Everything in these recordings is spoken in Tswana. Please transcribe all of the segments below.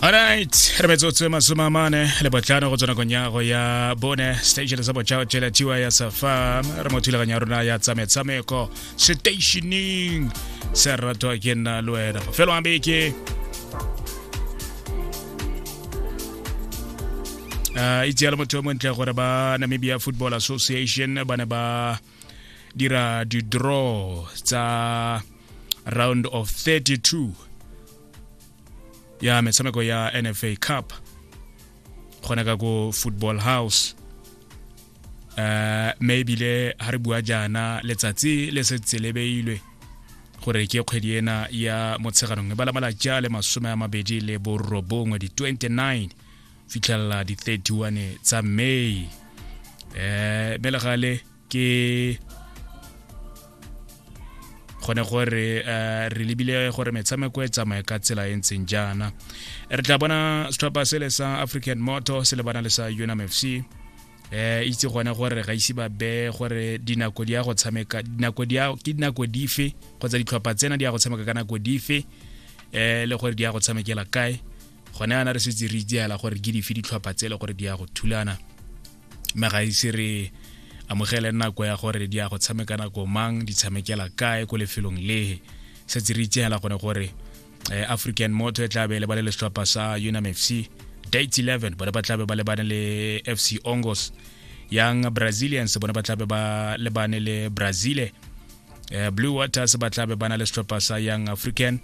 Alright, re metsotso e masome a mane le botlhano go tswa nakong ya go ya bone station sa botšhao tšela tiwa ya safa re mo thulaganyo ya rona ya tsametshameko stationing se ratwa ke nna le wena mafelo a beke uh, itse ya le motho yo montle gore ba namibia football association ba ne ba dira di-draw tsa round of 32 ya metshameko ya nfa cup gona ka ko football house uh, mme ebile ga re bua jaana letsatsi le se tselebeilwe gore ke kgwedi ena ya motsheganong e bala malatsi a le masome a mabedi le borobongwe di-29 fitlhelela di 31 tsa may eh mme le gale ke gone gore eh, re lebile gore metshameko e tsamaye ka tsela e ntseng jaana re tla bona setlhopha sele sa african moto se lebana le sa unam fc eh itse gone gore ga ise ba be gore dinako di ya go tshameka dinako di ya ke dinako dife kgotsa ditlhopha tsena di ya go tshameka ka nako dife eh le gore di ya go tshamekela kae gone yana re setse re itseela gore ke dife ditlhopha tse e le gore di ya go thulana mme ga ise re amogele nako ya gore di ya go tshameka nako mang di tshamekela kae ko lefelong lehe setse re itseela gone gore eh, african moto e tlabe e lebale le setlhopha sa unam fc date 11 bone ba tlabe ba lebane le fc ongos yang brazilians bone ba tlabe ba lebane le brazile eh, blue waters ba tlabe ba na le setlhopha sa young african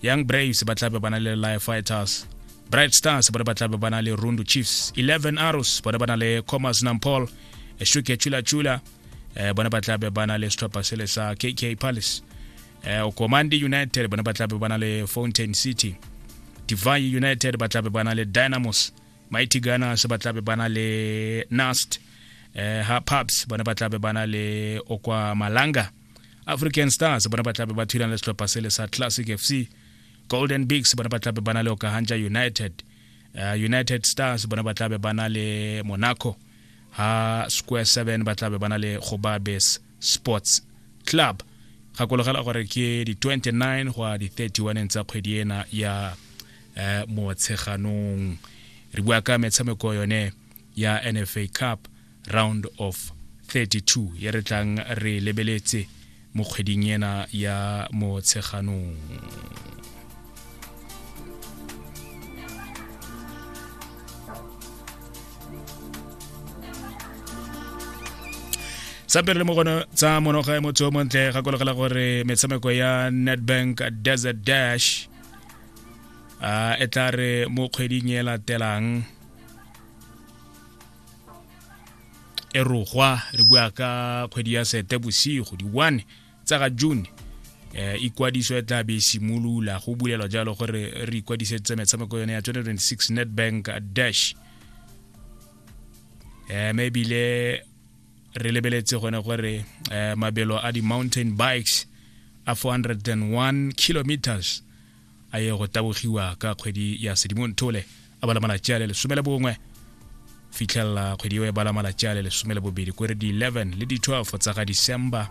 young braves ba tlabe ba na le life fighters bright stars bone ba tlabe ba na le rundu chiefs 11 arrows bone ba na le commerce nampol eh, shuke chula chula eh, bone ba tlabe ba na le setlhopha sele sa kk palace eh, okomandi united bone ba tlabe ba na le fountain city divine united ba tlabe ba na le dynamos mighty gunners ba tlabe ba na le nast eh ha pubs bona ba tlabe ba na le okwa malanga african stars bona ba tlabe ba thulana le setlhopha sele sa classic fc golden bigs bona ba tlabe ba na le okahanja united uh, united stars bona ba tlabe ba na le monaco ha square 7 ba tlabe ba na le gobabes sports club gakologela gore ke di-29 go a di-31 tsa kgwedi ena ya eh, motsheganong re bua ka metshameko yone ya nfa cup round of 32 ye re tlang re lebeletse mo kgweding ena ya motsheganong sampe re le mo gone tsa monoga ya motho o montle gakologela gore metshameko ya netbank desert dash a e tla re mo kgweding e latelang e rogwa re bua ka kgwedi ya sete bosigo di-one tsa ga june eh ikwadiso e tla be e simolola go bulelwa jalo gore re ikwadisetse metshameko yone ya 2026 netbank dash eh maybe le re lebeletse gone gore eh, mabelo a di-mountain bikes a 401 kilometers a ye go tabogiwa ka kgwedi ya sedimontole a bala malatsi a le lesome le bongwe fitlhelela kgwedi eo e bala malatsi a le lesome le bobedi kore di-11 le di-12 tsa ga december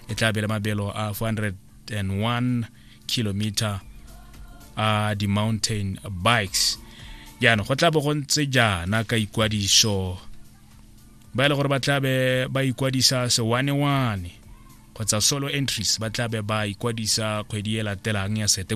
e tla bele mabelo a 401 kilometer a di-mountain bikes jaanong go tla bo go ntse jaana ka ikwadiso ba e le gore ba tlabe ba ikwadisa sewanewane kgotsa solo entries ba tlabe ba ikwadisa kgwedi e latelang ya sete